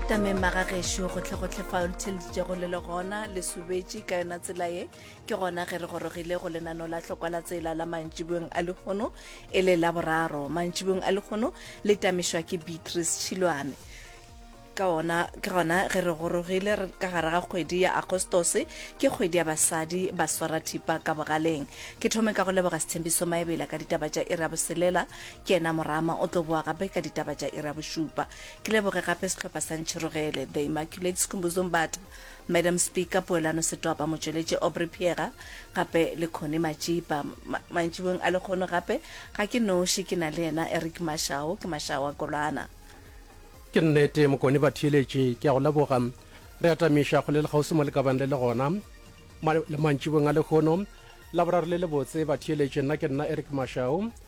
tameng magagešo go tle go tle fao letheleditšego le le gona le subetše ka yona tsela ye ke gona ge re gorogile go lenano la tlhokwa la tsela la mantšibong a lekgono e le la boraro mantšibong a lekgono le tamišwa ke beatrice tšhilwane ka ona ke gona ge re gorogile ka gare ga kgwedi ya agostose ke kgwedi ya basadi ba swara thipa ka bogaleng ke thome ka go leboga sethembiso maebela ka ditaba tša ira boselela Ke yena morama o tlo boa gape ka ditaba tša iri ya bošupa. Ke leboge gape sehlopha sa Ntšhirogele, The Immaculate Skhumbuzombata, Madam Speaker, Poelano Setopa, motšweletši Aubrey Phiega, gape le Connie Matšipa. Ma, mantšiboeng a lekgono gape, ga ke noši, ke na le yena Eric Mashao, ke Mashao wa Kolwana. Ke nnete, Mokone Batheeletši, ke a go leboga. Re atamiša kgole le kgauswi mo le ka bang le le gona. Ma, le mantšiboeng a lekgono, Laboraro le lebotse, Batheeletši, nna ke nna Eric Mashao.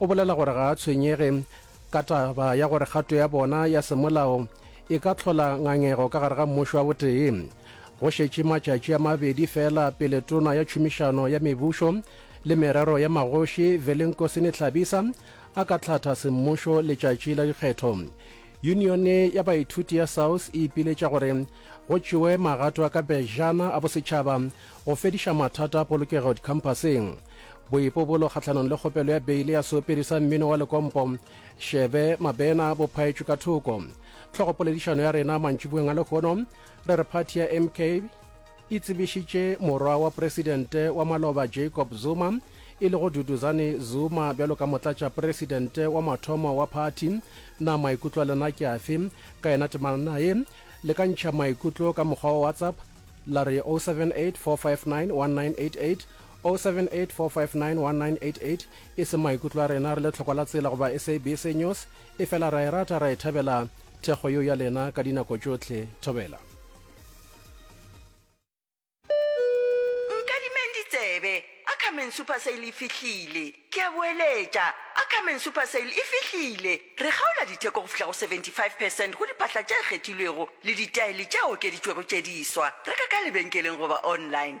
O bolela gore ga a tshwenyege ka taba ya gore kgato ya bona ya semolao e ka tlhola ngangego ka gare ga mmušo wa botee. Go šetše matšatši a mabedi fela pele tona ya tšhomišano ya mebušo le merero ya magoši Velenkosini Hlabisa a ka tlhatha semmušo letšatši la dikgetho, yunione ya baithuti ya SAUS e ipiletša gore go tšewe magato a ka pejana a bosetšhaba go fediša mathata a polokego dikhampaseng. boipobolo kgahlanong le kgopelo ya beile ya seopedi sa mmino wa lekompo šebe mabena bo phaetšwe ka thoko tlhogopoledišano ya rena mantšiboeng a lehono re re phathi ya mk e tsebišitše morwa wa presidente wa maloba jacob zuma e lego duduzane zuma bjalo ka motlatša presidente wa mathomo wa phathi na maikutlo a lena ke afe ka yena temana naye le ka ntšha maikutlo ka mokgwa wa whatsapp la re 078 459 1988 0784591988 e se maikutlo a rena re le tlhokwa la tsela goba SABC News e fela ra e rata ra e thabela thekgo yeo ya lena ka dinako tšohle thobela. Nkadimeng ditsebe, Ackerman Super Sale e fihlile! Ke a boeletša, Ackerman Super Sale e fihlile! Re kgaola ditheko go fihla go 75 percent go diphahla tše kgethilwego le ditaele tše okeditšwego tše diswa. Reka ka lebenkeleng goba online.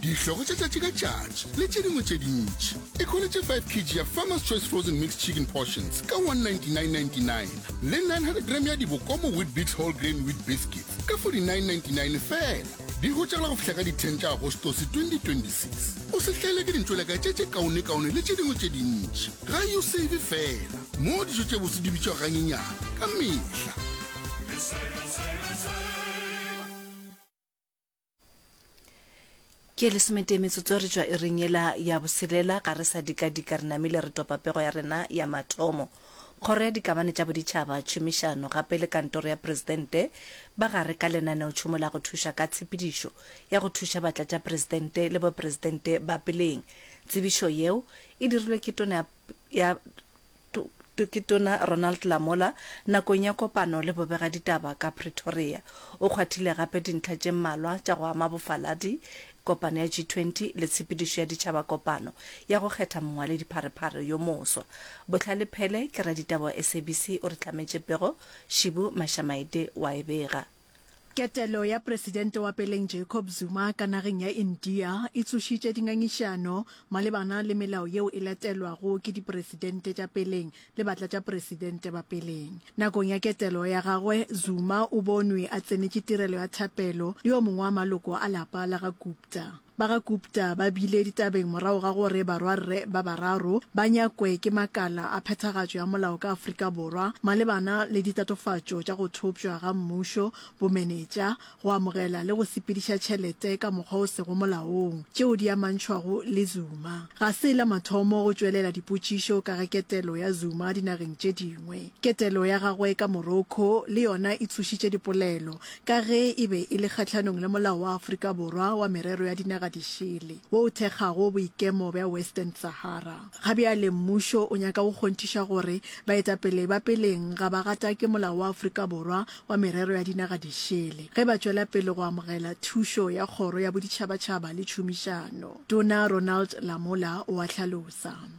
dihlogo tša tšatši ka tšatši le tše dingwe tše dintši e kholetše 5 kg ya farmers choice frozen mixed chicken portions ka 199.99 le 900 gram ya dibokomo wheat bix whole grain wheat biscuits ka 49.99 fela di hotšagela go fihla ka di-10 tša agostose 2026 o se hlaele ke dintšweleka tše tše kaonekaone le tše dingwe tše dintši ga yo save fela moo dijo tše bose di bitšwa ganyenyana ka mehla ke lesometee metsotso re tšwa ereng yela ya boselela ga re sa dikadika re namile re topa pego ya rena ya mathomo kgoro ya dikamane tša boditšhaba tšhomišano gape le kantoro ya presidente ba gare ka lenaneotšhomo la go thuša ka tshepedišo ya go thuša batlatšapresidente le bopresidente ba peleng tsebišo yeo e dirilwe ke tona ya Tokitona Ronald Lamola nakong ya kopano le bobegaditaba ka Pretoria. O kgwathile gape dintlha tše mmalwa tša go ama bofaladi, kopano ya G20 le tshepedišo ya ditšhabakopano ya go kgetha mongwaledipharephare yo moswa. Bohlale Phele ke raditaba wa SABC o re hlametše pego, Shibu Mashamaite wa e bega. Ketelo ya presidente wa peleng Jacob Zuma ka nageng ya India e tsošitše dingangišano malebana le melao yeo e latelwago ke dipresidente tša peleng le batlatšapresidente ba peleng. Nakong ya ketelo ya gagwe, Zuma o bonwe a tsenetše tirelo ya thapelo le yo mongwe wa maloko a lapa la ga Gupta. Ba ga Gupta ba bile ditabeng morago ga gore barwarre ba bararo ba nyakwe ke makala a phethagatšo ya molao ka Afrika Borwa malebana le ditatofatšo tša go thopšwa ga mmušo, bomenetša, go amogela le go sepediša tšhelete ka mokgwa o sego molaong, tšeo di amantšhwago le Zuma. Ga se la mathomo go tšwelela dipotšišo ka ga ketelo ya Zuma dinageng tše dingwe. Ketelo ya gagwe ka Morocco le yona e tsošitše dipolelo ka ge e be e le kgahlanong le Molao wa Afrika Borwa wa Merero ya Dinaga Dišele wo o thekgago boikemo bja Western Sahara. Ga bjale mmušo o nyaka go kgonthiša gore baetapele ba peleng ga ba gatake Molao wa Afrika Borwa wa Merero ya Dinaga Dišele ge ba tšwela pele go amogela thušo ya Kgoro ya Boditšhabatšhaba le Tšhomišano, Tona Ronald Lamola o a hlalosa.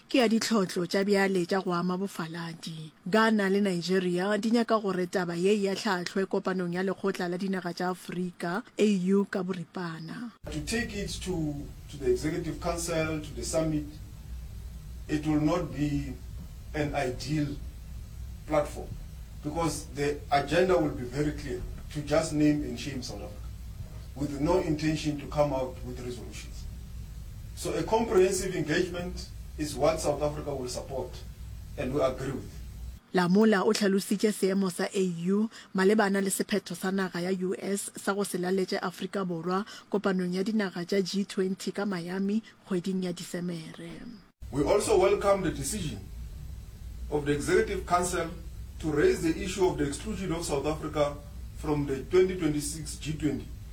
Ke ya ditlhotlo tša bjale tša go ama bofaladi. Ghana le Nigeria di nyaka gore taba ye e ahlahlwe kopanong ya Lekgotla la Dinaga tša Afrika, AU, ka boripana. To take it to to the executive council, to the summit, it will not be an ideal platform because the agenda will be very clear, to just name and shame South Africa with no intention to come out with resolutions. So a comprehensive engagement is what South Africa will support and we agree with. Lamola o hlalositše seemo sa AU malebana le sephetho sa naga ya US sa go se laletše Afrika Borwa kopanong ya dinaga tša G20 ka Miami kgweding ya Disemere. We also welcome the decision of the Executive Council to raise the issue of the exclusion of South Africa from the 2026 G20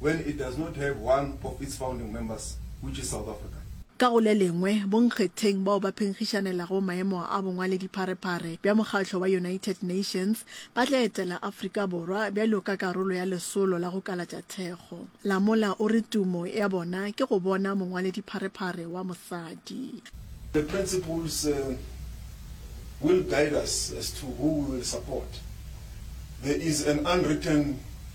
when it does not have one of its founding members which is South Africa. Ka go le lengwe, bonkgetheng bao ba phenkgišanelago maemo a bongwaledipharephare bja mokgatlo wa United Nations ba tla etela Afrika Borwa bjalo ka karolo ya lesolo la go kalatša thekgo. Lamola o re tumo ya bona ke go bona mongwaledipharephare wa mosadi. The principles will guide us as to who we will support. There is an unwritten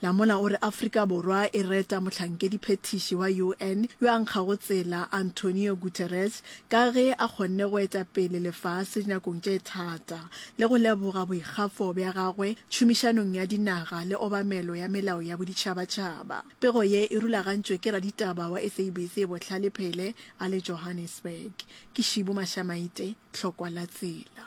Lamola o re Afrika Borwa e reta mohlankedi-phethiši wa UN yo a nkgago tsela Antonio Guterres ka ge a kgonne go eta pele lefase dinakong tše thata le go leboga boikgafo bja gagwe tšhomišanong ya dinaga le obamelo ya melao ya boditšhabatšhaba. Pego ye e rulagantšwe ke raditaba wa SABC Bohlale Phele a le Johannesburg. Ke Shibu Mashamaite, Tlhokwa la tsela.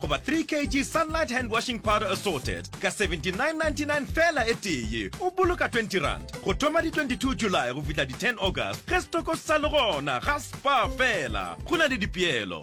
goba 3 kg sunlight hand washing powder assorted ka 79.99 fela e tee o boloka 20 rand go thoma di 22 july go fihla di 10 august ge setoko sa le gona ga spa fela go na le dipeelo